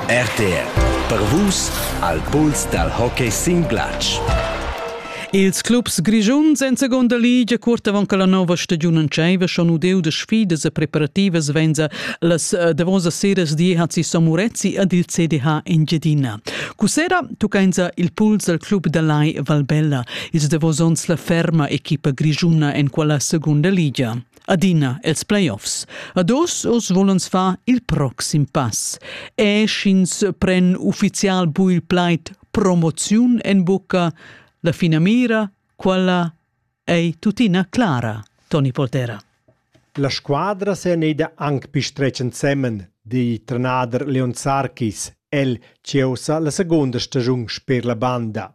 RTR per Vus al puls dal hockey sin glatsch. Ils clubs grischuns en seconda ligia cuort avant che la nova stagiun entscheiva schon udeu da sfidas e preparativas venza las eh, davosas seras di Hazi Samurezzi ed il CDH Engiadina. Cussera tuccainsa il puls dal club da Lai Valbella. Ils davos onns la ferma equipa grischuna en quella seconda ligia. adina els playoffs. Ad os os volens fa il proxim pass. E sch'ins pren ufficial bu il plaid promoziun en bucca, la finamira, quella ei tuttina clara, Toni Poltera. La squadra se neida anc pi stretg ensemen, di trenader Leon Sarkis, el ceusa la segunda stagiun sper la banda.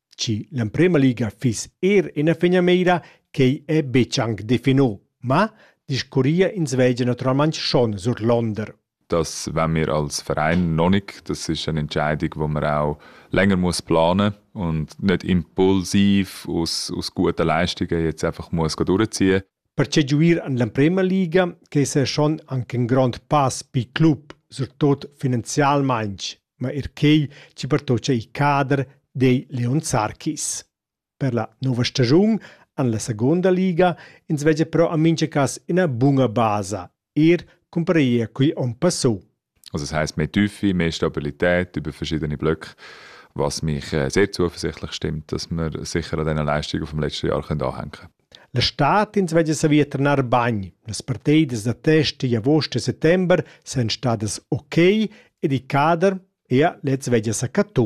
Chi l'emprema liga fiss eir ina finamira quei è betg anc definù, ma discurria ins veglia naturalmain schon surlonder. Das wenn wir als Verein noch nicht. Das ist eine Entscheidung, die man auch länger muss planen muss und nicht impulsiv aus, aus guten Leistungen jetzt einfach muss durchziehen Perche giuir en l'emprema liga che esa schon anc ün grond pass pel club, surtot finanzialmaing, ma eir quei chi pertocca il cader dei Leon Sarkis. Per la nouva stagiun en la seguonda liga ins veggia però a mincha cas üna buna basa er cumparair quei onn passau. Also das heisst mehr Tiefe, mehr Stabilität über verschiedene Blöcke, was mich äh, sehr zuversichtlich stimmt, dass wir sicher an den Leistungen vom letzten Jahr können anhängen können. La stad ins veglia savia trenar bagn. Las partidas da test di agost e settember san stadas ok ed il cader ea lez veglia sa cattu.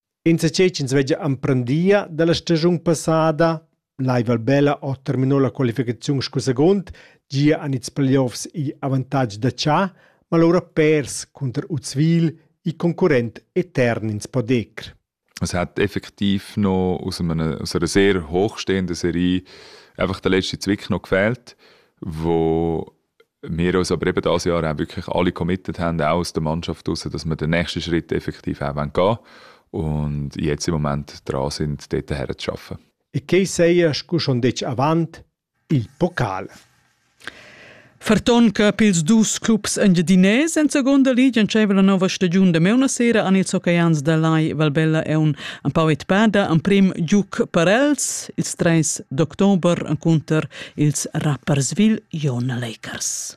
Insatgei ch'ins veglia emprendia dalla stagiun passada lai Valbella ha terminau la qualificaziun sco secund. Gia han ils playoffs igl avantatg da tschà, ma lura pers cunter Uzwil, il concurrent etern ins podecr. Es hat effektiv noch aus einer, aus einer sehr hochstehenden Serie einfach der letzte Zwick noch gefehlt, wo wir uns aber eben das Jahr auch wirklich alle committed haben, auch aus der Mannschaft draussen, dass wir den nächsten Schritt effektiv auch gehen wollen und jetzt im Moment dran sind, dort herzuarbeiten. E che seias cu schon detg avant il Pokal? Farton Cup ils dus clubs engiadinés en seconda liga entscheiva la nova stagiun de meuna sera an ils hockeys da Lai Valbella e un empau etpada emprim giuc per els ils treis d'october encunter ils rappersville Ion Lakers.